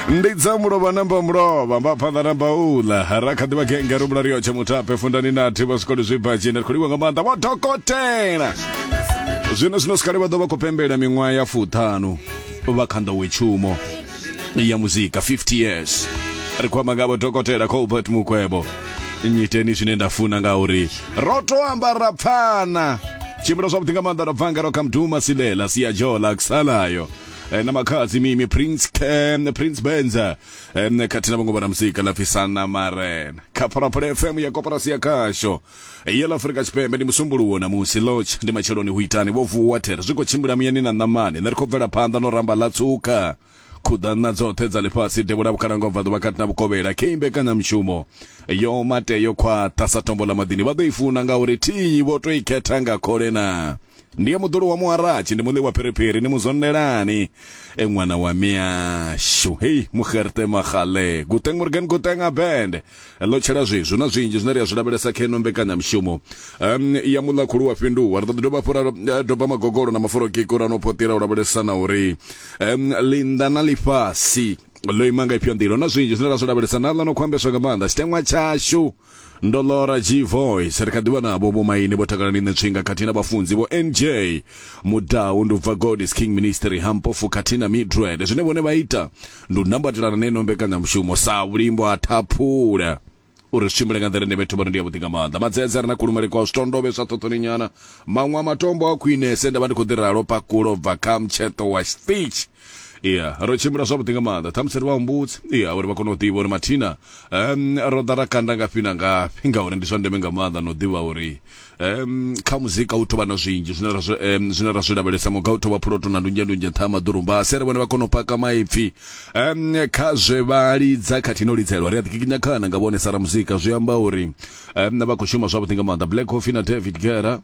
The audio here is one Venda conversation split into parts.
ndi dza mulovha namba mulovha mba phanḓa namba uḽa ra kha ḓivha genge ri vhulariyo tsha mutape fundani na thi vha swikoli zwibadzhini ri khou livha nga maanḓa vho dokotela zwino zwino sikale vha ḓo vha khou pembela miṅwaha ya fuṱhanu vha kha nḓowetshumo ya muzika 50 years ri khou amba nga vho dokotela colbert mukwebo nyiteni zwine nda funa nga uri ro to amba ra pfana tshimbila zwavhuḓi nga maanḓa ra bva ngaro kha mduma silela siya jola kusalayo eh, na makhadzi mimi prince um, prince benza um, khathihi na vhongo vha na musika lapfi sana marena kha phalaphala fm ya koporasi ya khasho ya ḽa afurika tshipembe ndi musumbuluwo na musi lodge ndi matsheloni hu itani vho vuwa there zwi khou tshimbila muyani na ṋamani nṋe ri khou bvela phanḓa no ramba ḽa tsuka khuḓana dzoṱhe dza ḽifhasi devhula vhukhalanga ubva ḓuvha kati na vhukovhela khe imbekanyamushumo yo mate yo khwaṱha sa tombo ḽa maḓini vha ḓo i funa ngauri thiyi vho to i khetha nga khole na Ndi ya muḓulu wa muharatshi ndi muḽi wa phiriphiri ni muzwondelani e ṅwana wa miyashu hei muxerte maxale guteng morgan guteng abend ḽo tshela zwezwi na zwinzhi zwine ri a zwi lavhelesa kha ino mbekanyamushumo um, ya muḽa khulu wa fhinduwa ri ḓo ḓi dovha hafhu ra eh, doba magogolo na maforokiko ra no potira u lavhelesa na uri um, linda na lifhasi ḽo ima nga ifhio nḓila na zwinzhi zwine ra zwi lavhelesa na ḽa no khou ambeswa nga maanḓa tshiteṅwa tshashu ndo lora g voice ri kha ḓivha navho vho maine vho takalani nṋe tswinga khathihi na vhafunzi vho nj mudau ndi u bva god is king ministry hampofu khathihi na midred zwine vhone vha ita ndi u nambatelana neno mbekanyamushumo sa vhulimbo ha thaphula uri zwi tshimbile nga nḓila ine vhethu vhari ndi yavhuḓi nga maanḓa madzedze ri na kulumele kwa zwitondovhe zwa ṱhoṱhoni nyana maṅwe a matombo a khwinese nda vha ndi khou ḓi ralo pakulo bva kha mtsheṱo wa stitch iya ro tshimbila zwavhuḓi nga maanḓa ṱhamusi ri vha humbudzi iya uri vha kone u ḓivha uri mathina um ro ḓa ra kanda ngafhi na ngafhi ngauri ndi zwa ndeme nga maanḓa na u ḓivha uri um kha muzika u tovha na zwinzhi zwine ra um zwine ra zwi lavhelesa muga u tovha phuloto na ndunzhe ndunzhe nṱha ha maḓurumba a sere vhone vha kone u paka maipfi um kha zwe vha lidza khathihi no lidzelwa ri a ḓikikinya khana nga vhone sara muzika zwi amba uri um vha khou shuma zwavhuḓi nga maanḓa black coffee na david gera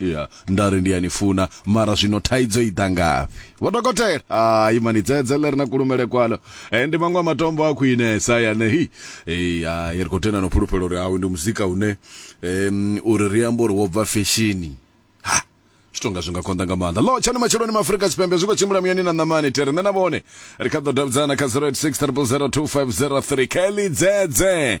ya nda ri ndi ya ni funa mara zwino thaidzo i ḓa ngafhi vho dokotela hayi mani dzedze ḽe ri na kulumele kwalo e ndi maṅwe a matombo a khwinesa yane hi ei hayi ri khou tenda no fhulufhela uri hawe ndi muzika une um uri ri amba uri wo bva feshini ha zwi tonga zwi nga konḓa nga maanḓa lo tshani matsheloni ma afrika tshipembe zwi khou tshimbila muyani na ṋamani tere nṋe na vhone ri kha ḓo davhidzana kha 086 0002503 kelly dzedze